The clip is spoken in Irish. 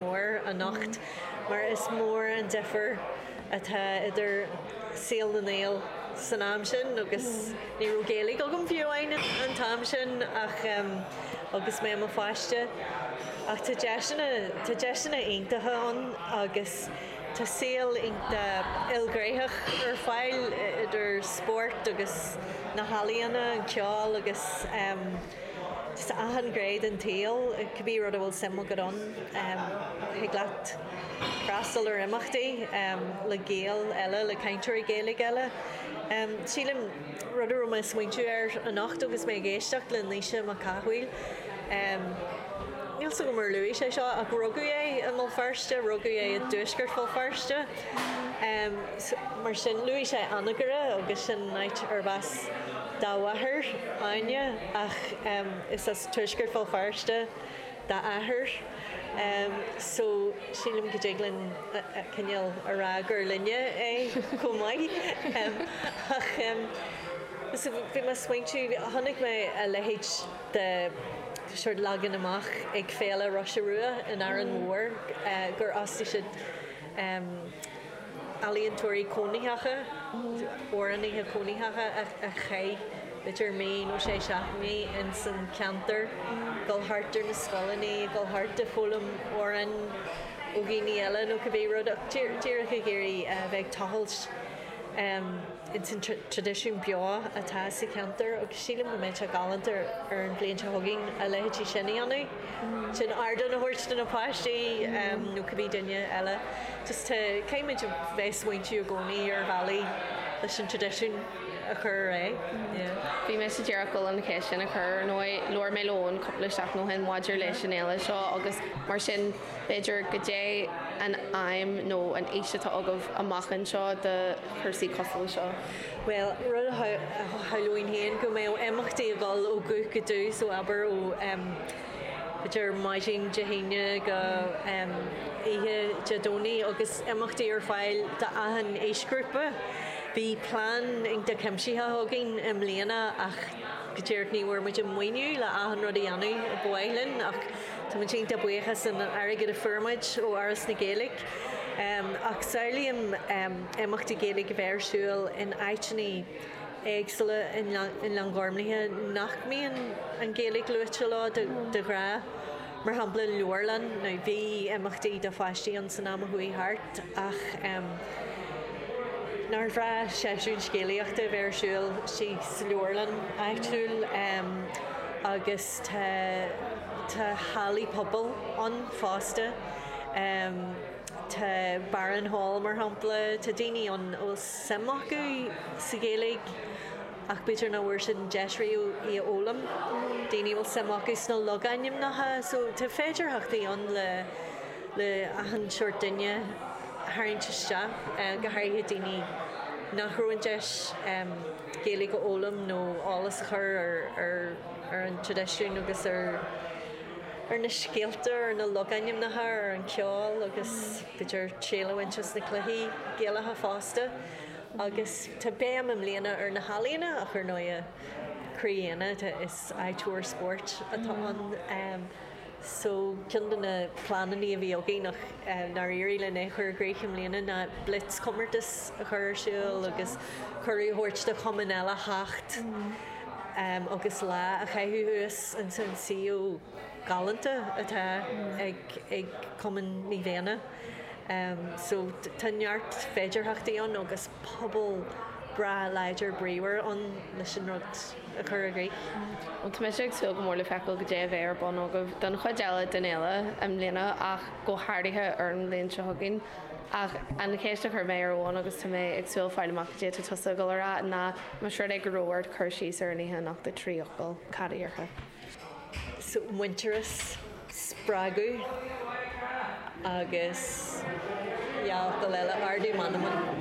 mór anocht mar is mór an difear atá idir saol na nGael san am sin agus ní raibh Gaeilge agam fiú amháin an t-am sin ach agus mé i mo pháiste ach tá deiseanna, tá deiseanna iontacha ann agus tá saol iontach ilghnéitheach ar fáil idir spórt agus na healaíona, an ceol agus. Is achan ghné den tsaol, cibé rud a bhfuil suim agat ann, thig leat freastal ar imeachtaí le Gaeil eile, le cainteoirí Gaeilge eile. Sílim, rud a raibh mé ag smaointiú air anocht agus mé ag éisteacht le Naoise Mac Cathmhaoil, níl 'fhios agam ar luaigh sé seo, ach rugadh é i mBéal Feirste, rugadh é i dtuaisceart Bhéal Feirste, mar sin luaigh sé Anagaire agus sin áit arbh as. dá máthair, Áine, ach is as tuaisceart Bhéal Feirste dá athair so sílim go dtig linn cineál a rá gur linne é chomh maith. Ach so bhí mé ag smaointiú, chonaic mé a leithéid de shórt leagan amach ag Féile Róise Rua in Árainn Mhór gur fhostaigh siad ealaíontóirí cónaitheacha, amhránaithe cónaitheacha a chaith b'fhéidir mí nó sé seachtainí ins an cheantar, dul thart ar na scoileanna, dul thart ag foghlaim amhráin ó dhaoine eile nó cibé rud ach díreach ag iarraidh bheith ag tochailt ins an traidisiún beo atá sa cheantar agus sílim go mbeadh sé galánta ar an bhliain seo chugainn a leithéid sin a dhéanamh, sin ardán a thabhairt do na páistí nó cibé duine eile. Caithfimid a bheith smaointiú i gcónaí ar bhealaí leis an traidisiún a chur ar aghaidh. Bhí mé go díreach ag dul an cheist sin a chur. Ar ndóigh, labhair mé le Eoin cúpla seachtain ó shin maidir leis an fhéile seo agus mar sin, b'fhéidir, goidé an aidhm nó an fhís atá agaibh amach anseo do chúrsaí cosúil le seo? Bhuel, rud a shamhlóinn féin ná go mbeadh imeachtaí ag dul ó dhubh go dubh, so abair ó. idir maidin Dé hAoine go oíche Dé Domhnaigh agus imeachtaí ar fáil d'achan aoisghrúpa. Bhí plean iontach cuimsitheach againn i mbliana ach go díreach ní bhfuair muid an maoiniú le achan rud a dhéanamh a ba mhaith linn ach tá muid iontach buíoch as an airgead a fuair muid ó Fhoras na Gaeilge. Ach samhlaím imeachtaí Gaeilge a bheith ar siúl in áiteanna. éagsúla i nGleann Ghormlaithe nach mbíonn an Ghaeilge luaite leo de ghnáth, mar shampla leabharlann, now bhí imeachtaí do pháistí ann san am a chuaigh thart ach nár bhreá seisiún scéalaíochta a bheith ar siúl sa leabharlann áitiúil agus tá tá hallaí pobail ann fosta, tá Barron Hall mar shampla, tá daoine ann ó suim acu sa Ghaeilge ach b'fhéidir nach bhfuair siad an deis riamh í a fhoghlaim, daoine a bhfuil suim acu sna logainmneacha so tá féidearthachtaí ann le achan seort duine a tharraingt isteach, go háirithe daoine nach raibh an deis acu Gaeilge a fhoghlaim nó eolas a chur ar an traidisiún agus ar na scéalta, ar na logainmneacha, ar an cheol agus. B'fhéidir triail a bhaint as na cluichí Gaelacha fosta agus tá béim i mbliana ar na healaíona ach ar ndóigh croí Éanna is eagraíocht spóirt atá ann so ceann de na pleananna a bhí againn ach nár éirigh linn é chur i gcrích i mbliana ná blitz comórtas a chur ar siúl agus cuireadh a thabhairt do chumainn eile theacht agus lá a chaitheamh thuas ansin. galánta atá ag Cumann Naomh Éanna. So tá neart féidearthachtaí ann agus pobal breá láidir bríomhar ann leis an rud a chur i gcrích. Bhuel, tá mise ag súil go mór le feiceáil cad é a bheidh ar bun agaibh don chuid eile den fhéile i mbliana ach go háirithe ar an mbliain seo chugainn. Ach an cheist a chuir mé ar Eoin, agus tá mé ag dúil fáil amach cad é atá tusa ag dul a rá, ná más rud é go raibh ort cur síos ar an oíche anocht i dtrí fhocal, cad a dhéarfá? muintearas, spreagadh agus, yeah, dhá fhocal eile, ardú meanman.